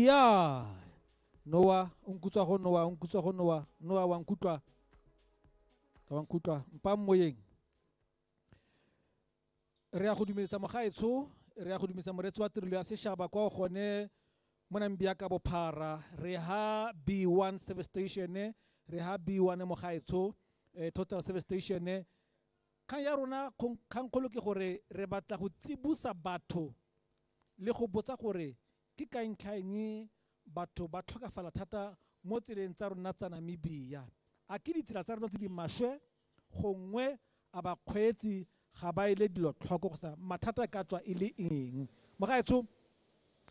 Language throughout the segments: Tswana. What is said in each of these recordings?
ya noa o nkutswa go noa o nkutswa go noa noa wa nkutlwa ka wa nkutlwa mpa moyeng re ya go dumeletsa mogaetsho re ya go dumisa moretsi wa tirelo ya sešaba kwa gone mo nambia ka bophara re ha b1 service station re ha b1 mogaetsho eh, total service station Kgang ya rona kgangkgolo ke gore re batla go tsibosa batho le go botsa gore ke ka ntlha eng batho ba tlhokafala thata mo tseleng tsa rona tsa Namibia. A ke ditsela tsa rona tse di maswe gongwe a bakgweetsi ga ba ele dilo tlhoko kgotsa mathata e ka tswa e le eng? Mogaetsho,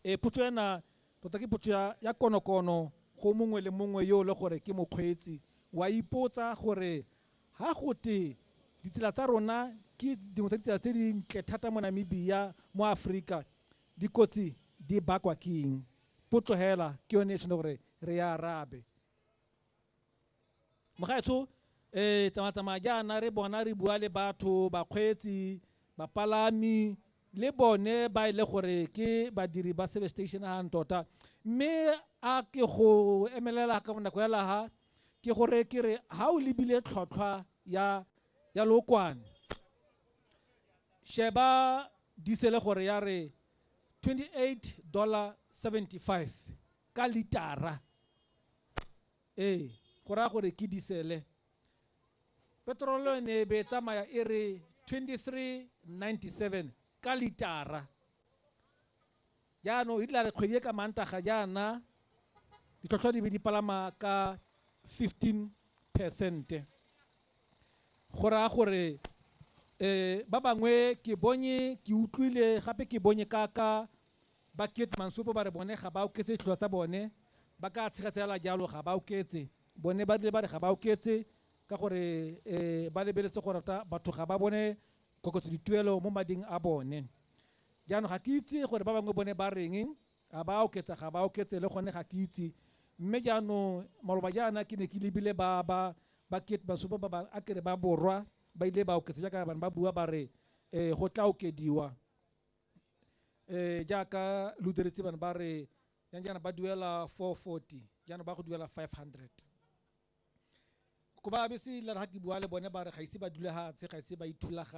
ee potso ena tota ke potso ya konokono go mongwe le mongwe yo e le gore ke mokgweetsi. O a ipotsa gore Ha go te ditsela tsa rona ke dingwe tsa ditsela tse di ntle thata mo Namibia, mo Aforika, dikotsi di bakwa ke eng? Potso hela ke yone e tshwanetse gore re e arabe. Mogaetsho um eh, tsamatsamaya jaana re bona re bua le batho bakgweetsi bapalami le bone ba e le gore ke badiri ba service station ga tota mme a ke go emelela ka bonako ya laga ke gore ke re ha o lebile tlhotlhwa ya ya lokwane sheba disele gore ya re 28 dollar 75 ka litara ee go raya gore ke disele petrolo e ne e be tsamaya e re 2397 ka litara Jaanong e tlare kgwedi e ka Mantaga jaana ditlhotlhwa di be di palama ka 15 percente go raya gore um ba bangwe ke bonye ke utlwile gape ke bonye kaka ba kate mansopo ba re bone ga ba oketse ditlhotlhwa tsa bone ba ka tshegatsela jalo ga ba oketse bone ba rile ba re ga ba oketse ka gore um ba lebeletse gore batho ga ba bone koketso dituelo mo mading a bone Jaanong ga ke itse gore ba bangwe bone ba reng, a ba a oketsa ga ba oketse, le gone ga ke itse. Mme jaanong maloba jaana ke ne ke lebile ba, ba, ba ketemasome ba bangwe, a ke re ba Borwa, ba ile ba oketsa jaaka ba ne ba bua ba re, Ee, go tlaa okediwa. Ee, jaaka lo diretse bana ba re, yang jaana ba duela 440, jaanong ba go duela 500. Ko ba be se ilare ga ke bua le bone ba re ga ise ba dule fatshe, ga ise ba ithulaganye.